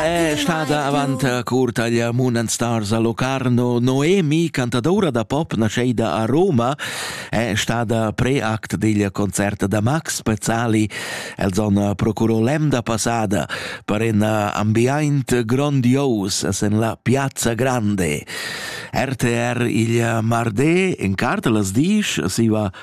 È stada avant cur taglia Moon and Stars a Locarno Noemi, cantadoura da pop nascheida a Roma, è stada preact digl concert da Max Pezzali. El zon procuro l'emda passada per in ambiaint grondios sen la Piazza Grande. RTR il Marde in cartelas disch siva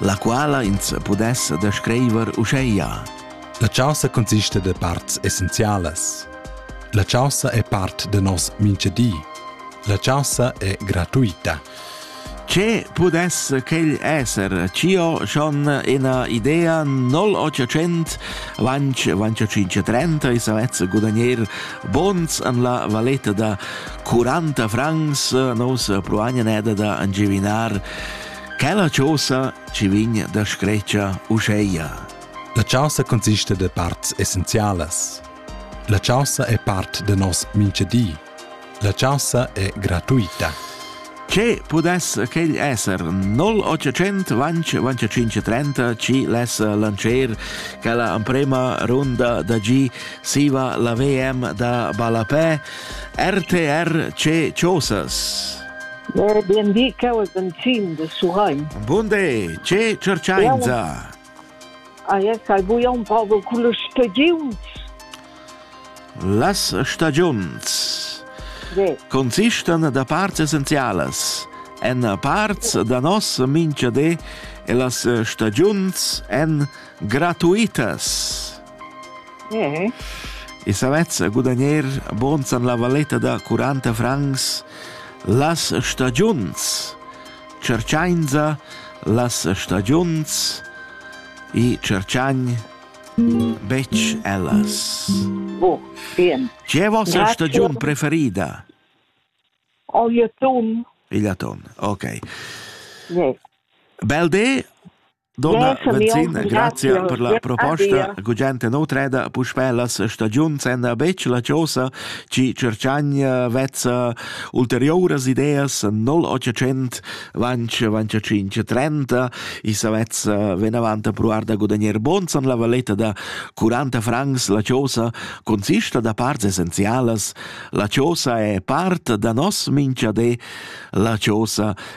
la quala ins pudess descriver uscheia. La chaussa consiste de parts essenzialas. La chaussa è part de nos minchedi. La chaussa è gratuita. Ce pudess quel esser? Cio schon ina idea 0800 vanch vanch 530 e savez gudagnir bons an la valetta da 40 francs nos proagna neda da angivinar Quella chosa ci vegn da scretscha uscheia. La chaussa consiste de parts essenzialas. La chaussa è part de nos minchedi. La chaussa è gratuita. Ce pudess quel esser 0800 vanc 2530 ci less lancer che la prima runda da G siva la VM da Balapè RTR C Chosas. Mo bien di, cheu el benzin de Surrein. Bunde, che cercainza! Ah, yes, hai buia un poco con le stagiuns. Las stagiuns sì. consistan da parts essenzialas. En parts da nos minchadé e las stagiuns en gratuitas. Mm -hmm. E savez gudagner bons an la valetta da 40 francs las stagiuns cerciainza las stagiuns e cerciagn betg ellas. Oh, bien. C'è vostra Grazie. stagiun preferida? O il aton. Il aton, ok. Yes. Bel de Donna Venzina, grazia per la proposta. Gugent nautreda, puspè las stagiuns èn betg la chosa chi cerchagna vezza ulteriuras ideas 0800 vanch vanch 530 i savezza venavant provar da gudagner bons an la valetta da 40 francs la chosa consista da parts essenzialas la chosa è part da nos minchadé la chosa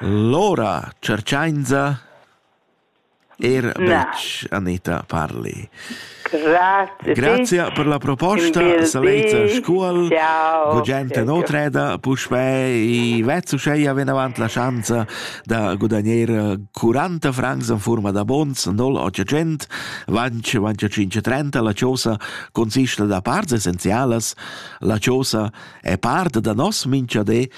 Lora tscherchainsa eir betg Anita Parli. Grazia per la proposta, Saleita Scuol. Ciao. Gugent nutreda puspè i vezz uscheia vinavant la schanza da gudagner 40 francs in forma da bons 0800 vanch vanch 530 la chosa consista da parts essenzialas la chosa E parte da nos minchadé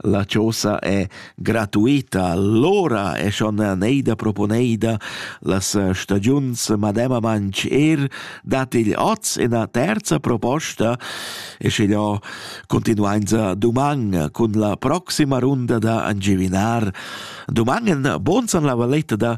la chosa è gratuita. Allora è schon neida proponeida las stagiuns mademamantsch er dat il oz ina terza proposta e sche jo continuainza duman cun la proxima runda da angivinar. Duman en bonsan la valetta da